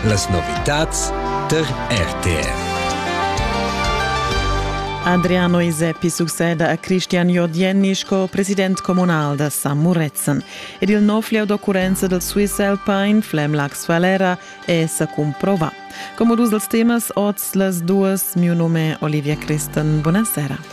Las novitads tar RTR. Adriano Iseppi succeda a Christian Jordienni sco president communal da San Murezzan ed il nov lieu d'occurrenza del Swiss Alpine Flemlax Falera è sa cumprovà. Come dus dels temas oz las duas, mio nome Olivia Christen. Buonasera.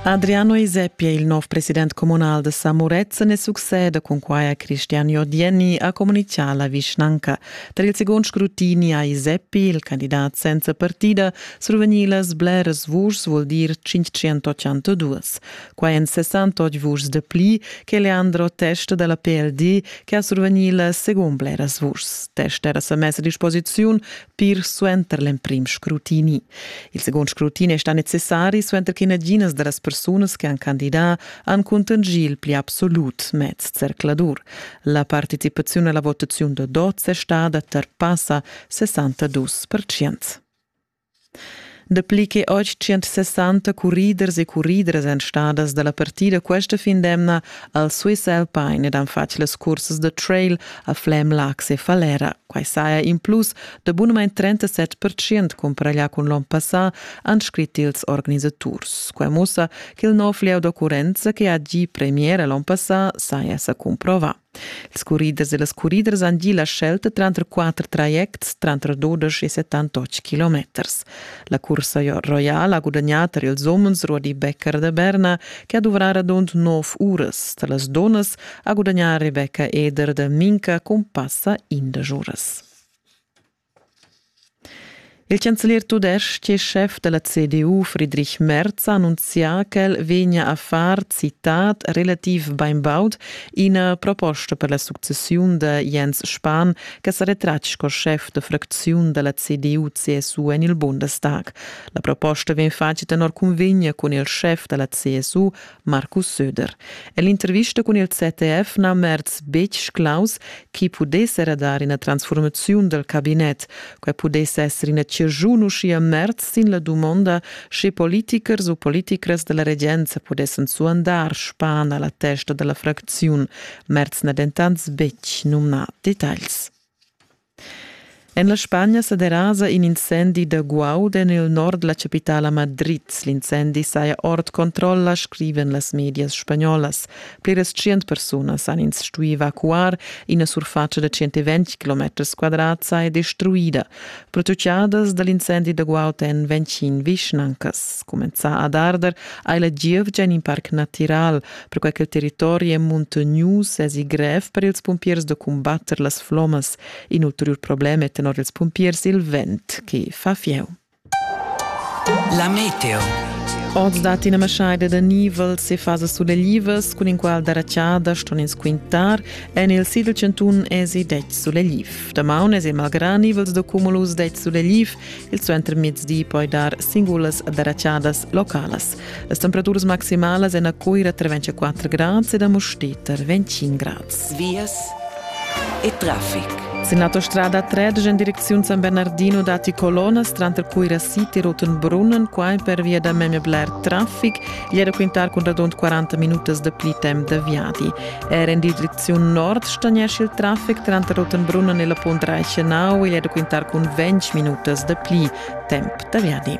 Adriano Iseppi è il nov president comunal da Samurezzen e succeda cun quai a Cristian Jodieni a comunicà la vischnanca. Tar il secund scrutini ha Iseppi, il candidat senza partida, survegnì las bleras vuschs, vul dir 582. Quai èn 68 vuschs dapli che Leandro Test da la PLD che ha survegnì la segund bleras vuschs. Test era sa mess a disposiziun pir suenter l'emprim scrutini. Il segund scrutini è stà necessari suenter che naginas da las persunas che han candidà han cuntanschì il pli absolut mez zercladur. La participaziun alla votaziun da dots è stada tar passa 62%. Dapli che 860 curriders e curridras èn stadas da la partida questa fin d'emna al Swiss Alpine ed han fatg las cursas da trail a Flem, Lax e Falera. Quai saja in plus da bunamain 37 percent cumparaglià cun l'onn passà, han scrit ils organisaturs. Quai mussa che il nov lieu d'occurrenza che ha gì premiera l'onn passà saja sa cumprovà. Ils curriders e las curriders han gì la scelta tranter quatter trajects tranter dudesch e settantotg kilometers. La cursa roiala ha gudagnà tar ils umens Rudi Becker da Berna che ha duvrà radund nov uras. Tar las dunnas ha gudagnà Rebecca Eder da Minca cun passa indesch uras. Il chanzelier tudestg e schef da la CDU Friedrich Merz ha annunzià ch'el vegnia a far, citat, relativ bainbaud ina proposta per la successiun da Jens Spahn che sa retratg sco schef da fracziun da la CDU-CSU en il Bundestag. La proposta vegn fatga tenor cunvegna cun il schef da la CSU Markus Söder. Ell'intervista cun il ZDF na merz betg claus chi pudess era dar ina transformaziun dal cabinet. Quai pudess esser ina ciaschun uschia merz sin la dumonda sche politichers u politicras da la regenza pudessan suandar span a la testa da la fracziun. Merz n'ha dentant betg numnà detagls. En la Spagna sa derasa in incendi da guaud en il nord la chapitala Madrid. L'incendi saja ord controlla, scrivan las medias spagnolas. Pliras tschient persunas han ins stuì evacuar. Ina surfatscha da 120 km quadrats è destruida. Prototiadas da l'incendi da guaud èn 25 vischnancas. Cumenzà ad arder hai la gievgia in parc natiral. perquai che il territori è muntognius èsi grev per ils pumpiers da cumbatter las flommas. In ulteriur problem è tenor ils pumpiers il vent che fa fieu. La meteo. Oz dat ina maschaida da nivel se fasa suleglivas, cun in qual da racciada ston ins quintar. En il Sidl Centun esi 10 sulegliv. Damaun esi malgrà nivels da cumulus 10 sulegliv, il suenter mezdi poi dar singulas da racciadas localas. Las temperaturas maximalas en a Coira tra 24 grads ed a Mostita 25 grads. Vias e traffic. Sin l'autostrada 13 en direcziun San Bernardino dati colonas tranter Coira City e Rotenbrunnen, qua per via da memia bler traffic, e da quintar cun radund 40 minutas da pli temp da viadi. Er en direcziun nord stagnesce il traffic tranter Rotenbrunnen e la Punt Reichenau e da quintar cun 20 minutas da pli temp da viadi.